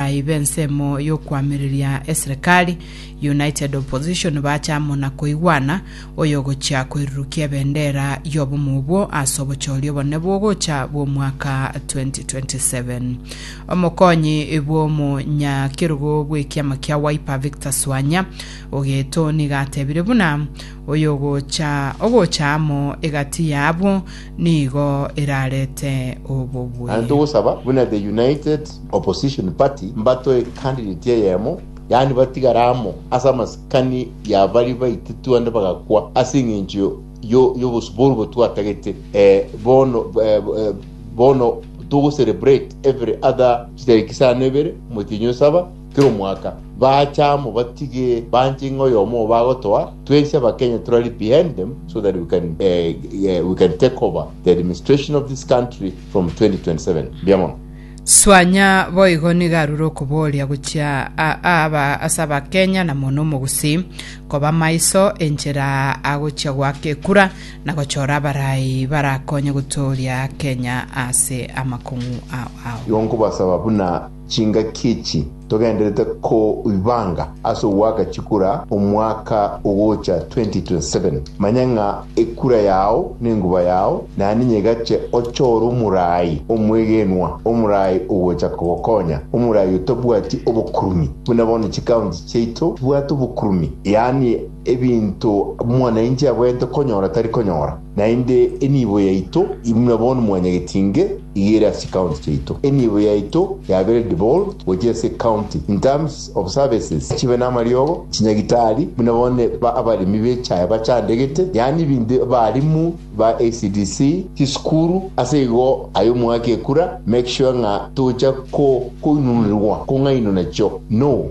Naiba ensemo y'okoamereria eserekari, United Opposition, bache amo na koigwana, oyogochia koirurukia ebendera y'obomo obwo ase obochori obonene bw'ogocha bw'omwaka 2027. Omokonyi bw'omonyakerogo bw'ekiama kia Wiper Victor Swanya ogeto nigo atebire buna oyogocha ogocha amo egati yabo nigo erarete obobwe. Naende togosaba buna The United Opposition Party mbatoe candidate eyemo, yaani batigare amo ase amasikani ya baria baitetwe naende bagakwa ase eng'encho yo- y'obosio boria obo twatagete eh, bono eh, eh, bono togo celebrate every other chitariki isano ibere, motienyi osaba Kera omwaka bacha amo batige banche ng'a oyomo obo agotoa twensi abakenya torari behind them so that we can eh, eh, we can take over the administration of this country from 2027 mbuya mono Swanya boigo nigo arure okoboria gochia a- a- aba- ase abakenya na mono omogusi koba maiso enchera agochia goaka ekura na gochora abarai barakonye gotooria kenya ase amakong'u ao ao igo nkobasaba buna Chingaki echi togenderete koibanga ase ogoaka chikura omwaka ogocha 2027, manya ng'a ekura yao nenguba yao naende niyo egache ochore omorai omwegenwa, omorai ogocha kogokonya, omorai otabwati obokurumi, buna bono chikaunti chiaito chibwate obokurumi, yaani Ebinto mwanyainche abwenerete konyora tari konyora, naende enibo yaito imwe bono mwanyageti inge iga ere ase chikaunti chiaito. Enibo yaito yabere devolved gochia ase ecounty in terms of services, chibe namariogo, chinyagitari, buna bono ba abaremi b'echae bachandegete, yaani ebinto abarimu ba ECDC, chisukuru, ase igo aye omwaka ekura make sure ng'a tocha ko koinununerwa kong'ainwa nachio no.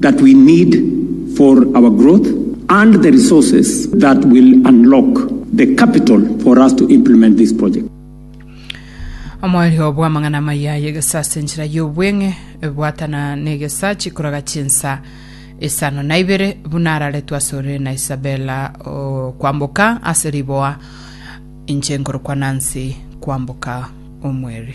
that we need for our growth and the resources that will unlock the capital for us to implement this project. Omoerio bw'amang'ana amaya ay'egesaa ase enchera y'obweng'e, bwatana negesaa chikoraga chinsa isano na ibere, buna araretwe asore na Isabella kwamboka ase riboa, inche nkorokwa Nancy kwamboka omweri.